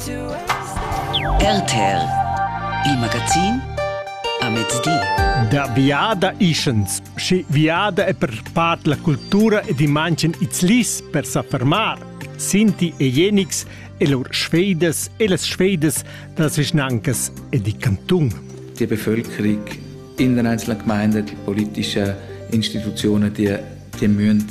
RTL, il magazin a mezdi. Da biada ischens, schi viada è per part la cultura ed i manchen its lis per sa fermar. Sinti e Jenix e lur Schweides e las Schweides das Vischnancas e di Kanton. Die Bevölkerung in den einzelnen Gemeinden, die politischen Institutionen, die dann müssen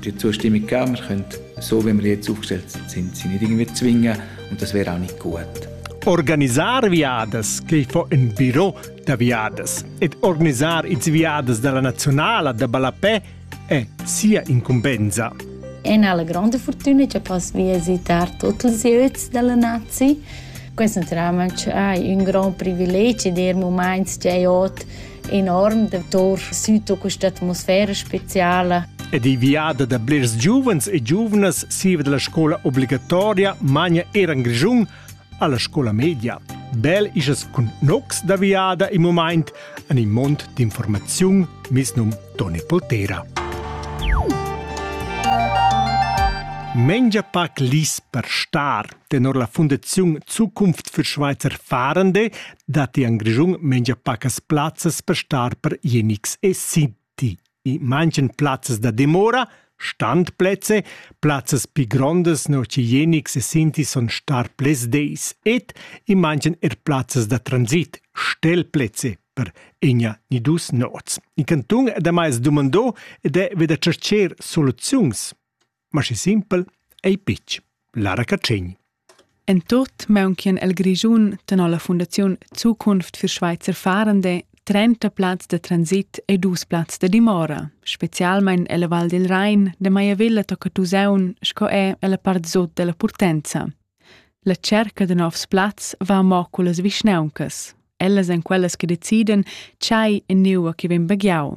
die zustimmige Kammer können, so wie wir jetzt aufgestellt sind, sie nicht irgendwie zwingen und das wäre auch nicht gut. Organizar viadas che fo in biro da viadas ed organizar its viadas dalla nazionala da ballapè è sia incumbensa. En alla grande fortuna che posso visitare tutti i ozzi della nazione. Questo naturalmente è un gran privilegio, der moments che ot enorm datour süto questa atmosfera speciala. Ed i viada da blers giuvens e giuvnas siva della scola obbligatoria magna era in Grischun alla scola media. Bel isas cun nox da viada in moment an il mont d'informaziun misnum Toni Poltera. Mengia pac lis per star Tenor la Fundaziun Zukunft für Schweizer Fahrende datti en Grischun mengia pacas plazzas per star per Jenics e Sinti. In manchen plazzas da dimora, standplätze, plazzas pi grondas no che Jenics e Sinti son star ples deis et in manchen er plazzas da transit, stellplätze per egna ni dus nots. In canton da mai es dumandò ed è veda cercher soluziuns ma schi simpel ei pitg. Lara Catschegn. En tot meuncien el Grischun tenor la Fundaziun Zukunft für Schweizer Fahrende 30 plazs de transit e dus plazs de dimora, specialmein ella Val del Rhein, de Maiavilla tocca Tuseun sco è ella part sot della Purtenza. La cerca de novs plazs va mo cullas vischnauncas. Ellas en quellas che deciden tschai e neua che vegn baghiau.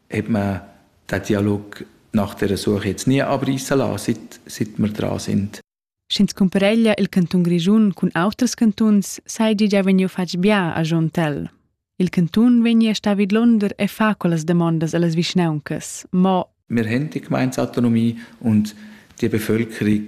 hat man den Dialog nach der Suche jetzt nie abreißen lassen, seit, seit wir dran sind. Sch'ins cumpareglia il cantun Grischun cun auters cantuns, sai di già vegniu fatg bia a Jontel. Il cantun vegni a sta vidlonder e fa quellas demandas allas vischnauncas, mo Wir haben die Gemeindeautonomie und die Bevölkerung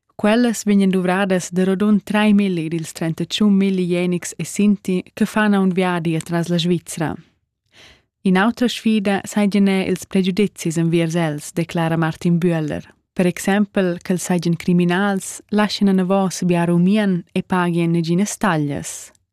Quellas vegnan duvradas da rodund traimilli dils trentatschun milli jenics e sinti che fan aunc viadi atras la Svizra. In'autra sfida seigien er ils pregiudizis enviers els, declara Martin Bühler. Per exempel che els seigien criminals, laschien anavos biar umien e pagien neginas taglias.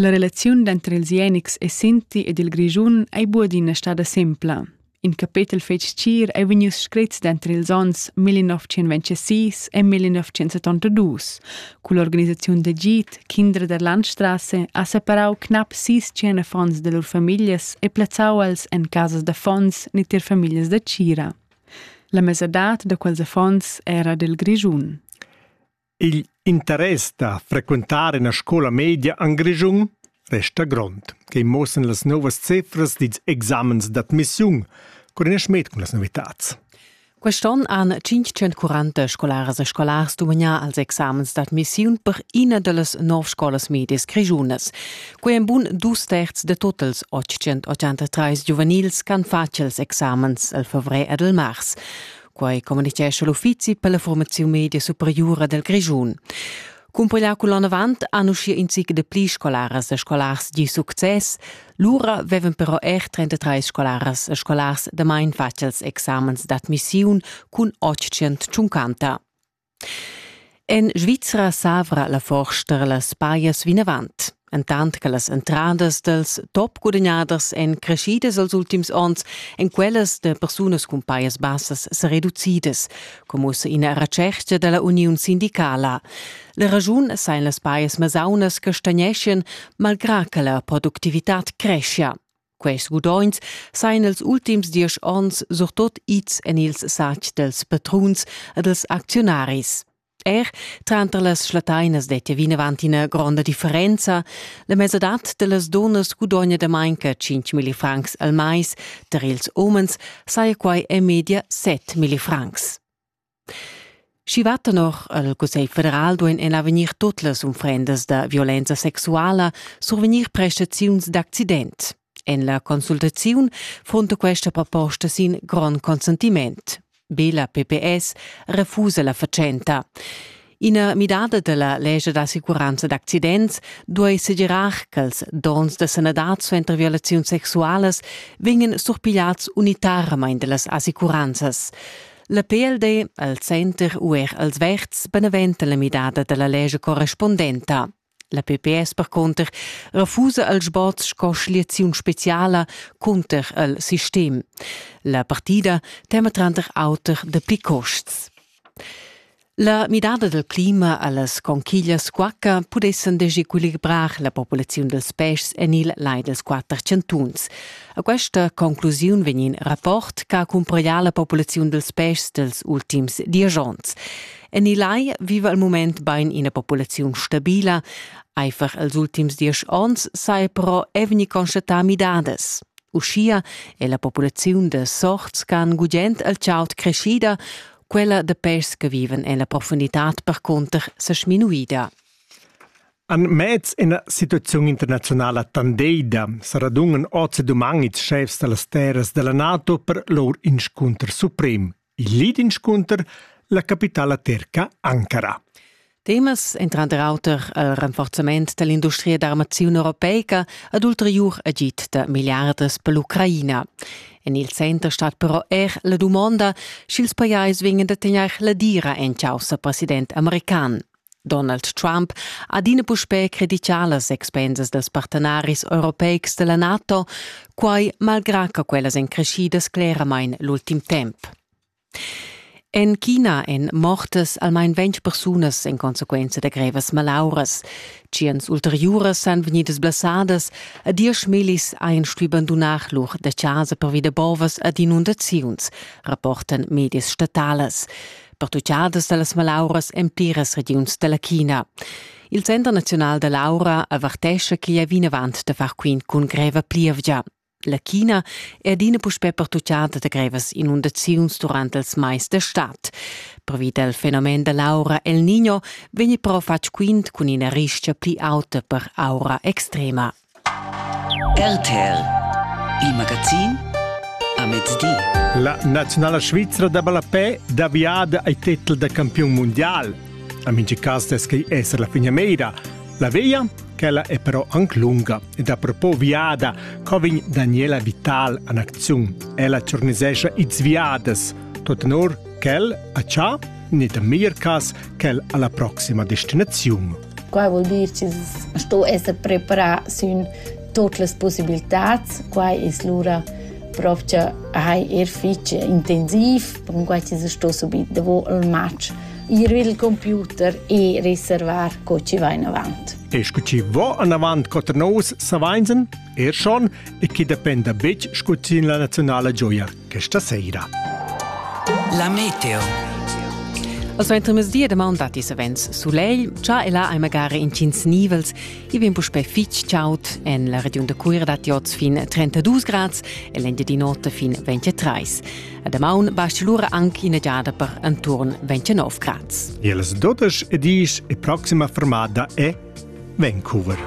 La relaziun denter ils Jenics e Sinti ed il Grischun ei buadina stada sempla. In capetel fetg tgir ei vegnius screts denter ils onns 1926 e 1972. Cull'organisaziun d'agid Kinder der Landstrasse ha separau knap sis tschien affons de lur famiglias e plazzau els en casas d'affons ni tier famiglias da tgira. La mesadad da quels affons era dil Grischun. Igl interess da frequentar ina scola media en Grischun resta grond, quei muossan las novas cifras dils examens d'admissiun, cur in schmet cun las novitads. Quest'onn han 540 scolaras e scolars dumagnà als examens d'admissiun per ina dallas nov scolas medias grischunas. Quei ein bun dus terz de totals 883 giuvenils che han fatg els examens el fevrer ed el mars. Quai communitgescha l'Uffizi per la formaziun media superiura del Grischun. Cumpigliau cunlanavant han uschia in zic de pli scolaras e scolars di success, lura vevan però er 33 scolaras e scolars damain facils examens d'admissiun cun 850. En Svizra s'avra la forsta las pajas vinavant. Entant che las entradas dals top gudagnaders èn crescidas els ultims onns, èn quellas da persunas cun pajas bassas sa reducidas, come ussa ina retschertga da la uniun sindicala. La ragiun sain las pajas masaunas che stagneschien malgrà che la productivitad creschia. Quest gudogns sajan els ultims diesch onns surtot ids en ils satgs dels patruns e dels acziunaris. Er tranter las schlatainas dettia vinavant ina gronda differenza. La mesadad de las donas gudogna da manca 5.000 francs al mais, tar ils umens saja quai en media 7.000 francs. Schi va tenor el Cussegl federal duein en avegnir tut las unfrendas da violenza sexuala survegnir prestaziuns d'accident. En la consultaziun frunta questa proposta sin grond consentiment. Be la PPS refusa la fatschenta. Ina midada dalla lescha d'assicuranza d'accidents duei segirar ch'ils donns da sanadad suenter violaziuns sexualas vegnan surpigliads unitaramein dallas assicuranzas. La PLD, el Center u er els Verds beneventa la midada dalla lescha correspondenta. La PPS percunter refusa al sboz sco schliaziun speciala cunter il sistem. La partida tema tranter auter dapi costs. La midada del clima allas conchiglias quacca pudessen desequilibrar la populaziun dels pèschs en il lai dels quatter chantuns. A questa conclusiun vegn in rapport che accumprerà la populaziun dels pèschs dels ultims dies onns. En il lai viva al mument bain ina populaziun stabila, Einfach els ultims diesch onns sai però evni constatar midadas. Uschia è la populaziun de sorts can gugent al chaut creschida, quella de pes che viven en la profundità percunter se sminuida. An mez ina situaziun internazionala tandeida saradungen oz e duman ils chefs da las terras della NATO per lor inscunter suprem. Il lead inscunter la capitala terca Ankara. Temas entran der auter al rinforzament dall'industria d'armaziun europeica ad ulteriur agid da milliardas per l'Ucraina. En il center stat però er la dumonda sch'ils pajais vegnan da tegnair la dira en caussa president american. Donald Trump ha adina puspè credità las expensas dals partenaris europeics da la NATO, quai malgrà che quellas èn creschidas cleramain l'ultim temp. En China èn mortas almain ventg persunas en consequenza da grevas malauras. Tschients ulteriuras èn vegnidas blessadas e diesch millis ein stui bandunar lur da chasa pervi da bovas ed inundaziuns, rapportan medias statalas. pertuchadas da las malauras en pliras regiuns da la China. Il Center naziunal da l'aura avertescha ch'igl è vinavant da far quint cun greva plievgia. La China è adina puspè pertuchada da grevas inundaziuns durant ils mais da stad. Previ dal fenomen da l'aura El Niño vegni però fatg quint cun ina ristga pli auta per aura extrema. RTL Il magazin a mezdi. La naziunala svizra da ballapè da viada ai titel da campiun mondial. A mingi cas descai esser la finiameira. La via quella è però anche lunga ed a propos viada covin Daniela Vital an acziun. Ella ciornisescia its viadas, tot enor quel a Cha, net a Mirkas, quel alla proxima destinaziun. Quai vul dir chi's sto esser preparà sün tuot las pussibiltats. Quai es lura propcha hai er fich intensiv, percunquai chi's sto subit davo il match ir il computer e reservar co chi va inavant. E scu chi vo anavant coter nous savainsen, er schon, e chi dependa betg scu sin la naziunala gioiar questa sera. La meteo. Al suentermezdi damaun datti savens sulegl, cha e là hai magari intgins nivels. I vegn puspè fitg chaud. En la regiun da Cuira datti oz fin 32 grads e l'engiadi notte fin 23. A damaun basti lura anche ina giada per intorno 29 grads. Il 12 e 10 e prossima fermata è Vancouver.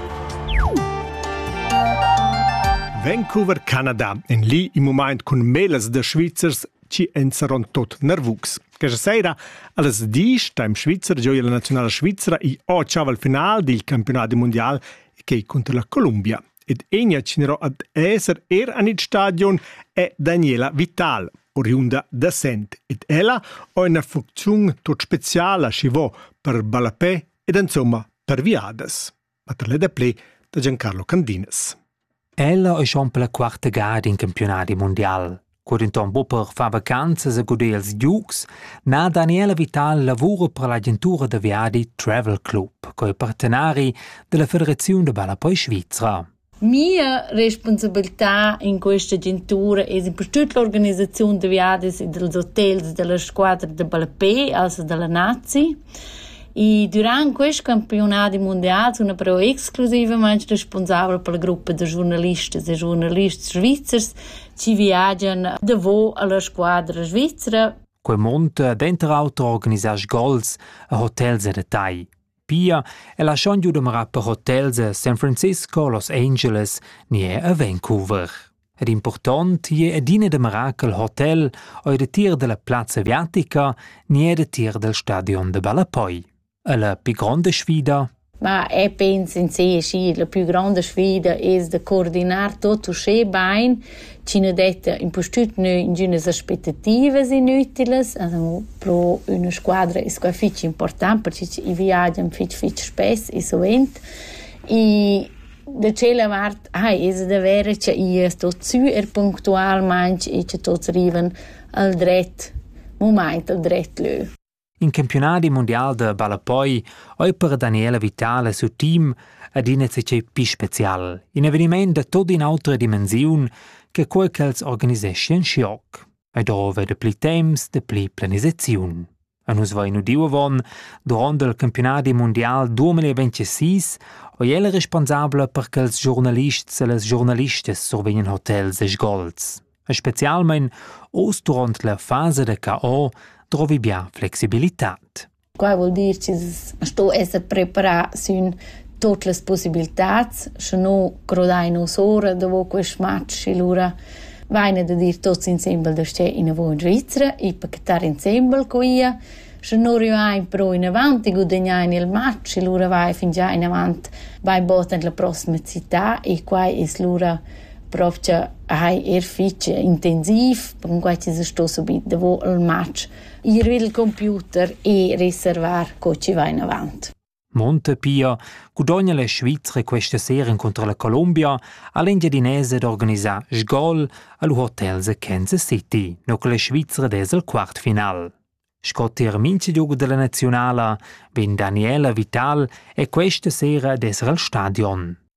Vancouver, Canada, in lì in moment cun melas da Svizzers ci ensaron tot nervucs. Questa sera alles dies time Schweizer gioia la nazionale svizzera i o al final del campionato mondial che contro la Columbia ed egna cinero ad esser er an il stadion è Daniela Vital, oriunda da Sent, ed ella ho una funcziun tot speciala schi vo per ballapè ed insomma per viadas, ma per le da ple da Giancarlo Candinas. Ella è schon per la quarta gada in campionati mondial. Cur denton Bupper fa vacanzas a guder els giugs, na Daniela Vital lavura per l'agentura da viadi Travel Club, co è partenari della Federazione da ballo poi Svizra. Mia respunsabiltà in questa agentura es in per tut l'organisaziun da viadis e dals hotels da la squadra da ballapè, also da la nazi. E dürant quist campiunadi mundial sun però exclusivamaing respunsabla per la gruppa da giurnalistas e giurnalists svizzers chi viagian davo a la squadra svizra. Quel mund denter auter organisar sgols e hotels e retai. Pia è la schon giu dumara per hotels a San Francisco, Los Angeles ni er a Vancouver. Ed important je adina dumarà che il hotel o il tir della plazza aviatica ni è il tir del stadion de Ballapoi. E la più grande sfida Ma e penso in sé, sì, la più grande sfida è de coordinar tutto schön bene, chi nu detta impustüt nü ingünas aspettativas inütilas, as han pro üna squadra es quai fich important perche i viagian fich fich spess e suvent. E da tschella vart hai es da verer cha i es tot sü er punctualmaing e cha tots rivan al dret mumaint al dret lö. In campiunadi mundial da ballapoi ei per Daniela Vitale sut team adina zatgei pli special, in eveniment da tutt'in'autra dimensiun che quei ch'els organiseschian schioc. E dove da pli temps, da pli planisaziun. A nus va in udiu avon duront il campionadi mondial 2026 oi el responsabla per che els giornalists e les giornalistas survegnan hotels e sgols. e specialmein oz duront la fasa da caor drovi bia flexibilitad. Qua vuol dir che sto esser preparà sün tutte le possibilità, se no grodai nos ora dopo questo match, allora vaine da dir tutti insieme da stare in una buona Svizzera e pachetare insieme con io Sche nu rivain però inavant e gudagnain il match e lura vai fingià inavant bainbod en la prossima città e quai es lura propcha hai er fich intensiv, percunquai chi se sto subit davo il match ir il computer e reservar co chi va inavant. Montepia gudogna la Svizra questa sera incontro la Colombia ha l'engiadinese d'organisar sgol al hotel The Kansas City, no che la Svizra des al quartfinal. Sco tier mince giogo della nazionala vegn Daniela Vital e questa sera desra al stadion.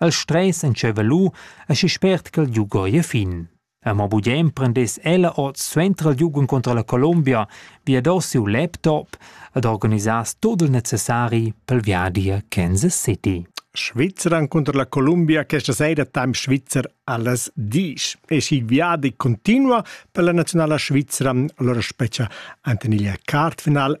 El stress entscheiva lu aschi spert ch'el liug ora a fin. Amo bugen prendess ella ord suenter il liug incontra la Colombia viadass siu laptop ed organisass tut il necessari pel viadi a Kansas City. Svizra incontra la Colombia questa sera temps svizzer alles dies. E si viadi continua per la nazionala svizra, allora speccia Antoniglia Card final